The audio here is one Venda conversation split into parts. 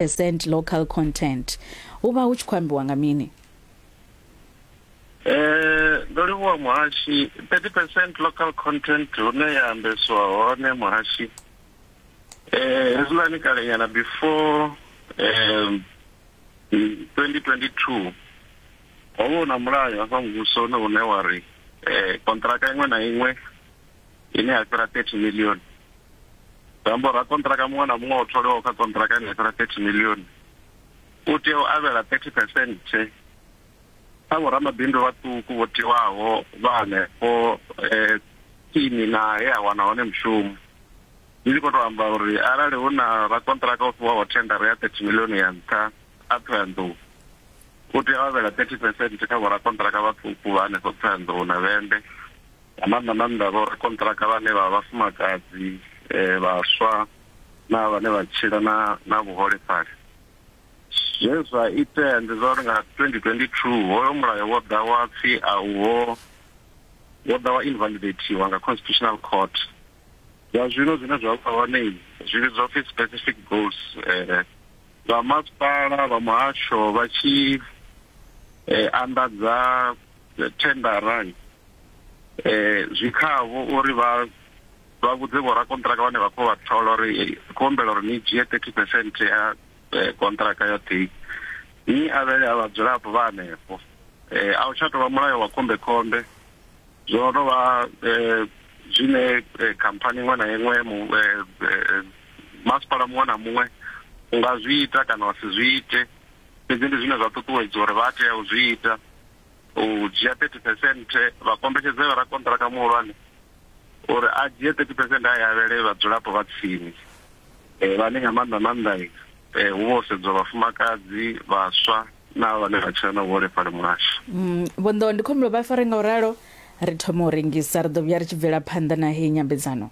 percent local content hu vha hu tshi khou ambiwa nga mini Eh, ndo livhuwa muhashi 30 percent local content hune ya ambesiwa hone muhashi eh hezwiḽani kalenyana before um 2022 ho vha hu na mulayo hafha muvhusoni une wa ri eh kontraka iṅwe na iṅwe ine ya fhira 30 million zambo ra kontraka muṅwe na muṅwe o tholiwaho kha kontraka ine ya fhira 30 million u tea u avhela 30 percent kha vhoramabindu vhaṱuku vho tiwaho vha hanefho um tsini na he a wana hone mushumo ndi tshi khou tou amba uri arali hu na rakontraka o fhiwaho thendara ya 30 million ya nṱha a thohoyanḓou u tea u avhela 30 percent kha vhorakontraka vhaṱuku vha hanefho thohoyanḓou na vhende nga maanḓa maanḓa vho rakonṱiraka vhane vha vhafumakadzi vhaswa na vhane vha tshila na na vhuholefhali. Zwe zwa itea ndi zwa uri nga 2022 hoyo mulayo wo ḓa wa pfhi a uho wo ḓa wa invalidateiwa nga Constitutional Court. Zwa zwino zwine zwa vha hone zwi vhidzwa pfhi specific goals vha masipala vha muhasho vha tshi anḓadza thendarani um zwi khavho uri vha vha vhudze vhorakonṱiraka vhane vha khou vha thola uri khou humbela uri ni dzhie thirty percent ya konṱiraka yoṱhe ni avhele a vhadzulapo vha hanefho um a u tsha tou vha mulayo wa khombekhombe zwo no vha um zwine khamphani iṅwe na iṅwe masipala muṅwe na muṅwe u nga zwi ita kana wa si zwi ite fhedzi ndi zwine zwa ṱuṱuwedzwa uri vha tea u zwi ita u dzhia 30 percent vha kombetshedze vha rakonṱiraka muhulwane uri a dzhie 30 percent a yavhele vhadzulapo vha tsini eh, vhane nga maanḓa maanḓa eh, hu vho sedzwa vhafumakadzi vhaswa na vhane vha tshila na vhuholefhali muhasho mm, vhonḓo ndi khombo vha fare nga u ralo ri thoma u rengisa ri ḓo vhuya ri tshi bvela phanḓa na heyi nyambedzano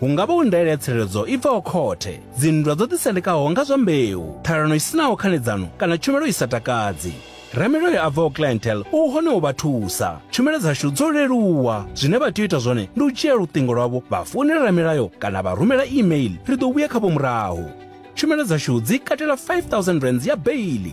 Hu nga vha u ndaela ya tsireledzo i bvaho khothe, dzinndwa dzo ḓisendekaho nga zwa mbeu, ṱhalano i si naho khanedzano kana tshumelo i sa takadzi. Ramilayo a bvaho Clientele u hone u vha thusa. Tshumelo dzashu dzo leluwa. Zwine vha tea u ita zwone ndi u dzhia luṱingo lwavho vha founela ramilayo kana vha rumela e-mail, ri ḓo vhuya khavho murahu. Tshumelo dzashu dzi katela R5000 ya beili.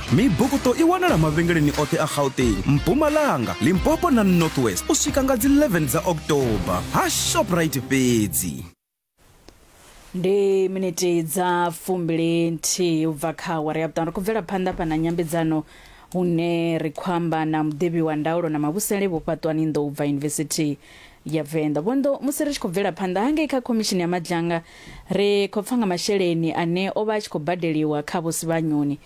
Mibukuṱo i wanala mavhengeleni oṱhe a Gauteng, Mpumalanga, Limpopo na North West u swika nga dzi 11 dza October ha Shoprite fhedzi. Ndi miniti dza fumbili nthihi u bva kha awara ya vhuṱanu ri khou bvela phanḓa fha na nyambedzano hune ri khou amba na muḓivhi wa ndaulo na mavhusele vho fhaṱwani ndo u bva yunivesithi ya venḓa vhondo musi ri tshi khou bvela phanḓa hangei kha khomishini ya madzhanga ri khou pfa nga masheleni ane o vha a tshi khou badeliwa kha vhosivhanyoni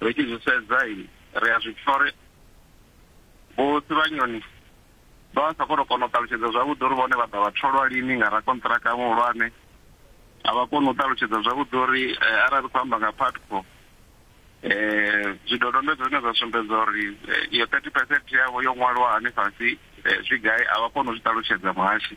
Ri tshi zwi sedza ri a zwi pfa uri Vho Sivhanyoni vha vha sa khou tou kona u ṱalutshedza zwavhuḓi uri vhone vha ḓa vha tholwa lini nga rakonṱiraka muhulwane, a vha koni u ṱalutshedza zwavhuḓi uri arali ri khou amba nga Putco zwidodombedzwa zwine zwa sumbedza uri iyo thirty percent yavho yo ṅwaliwa hani fhasi zwi gai a vha koni u zwi ṱalutshedza muhashi.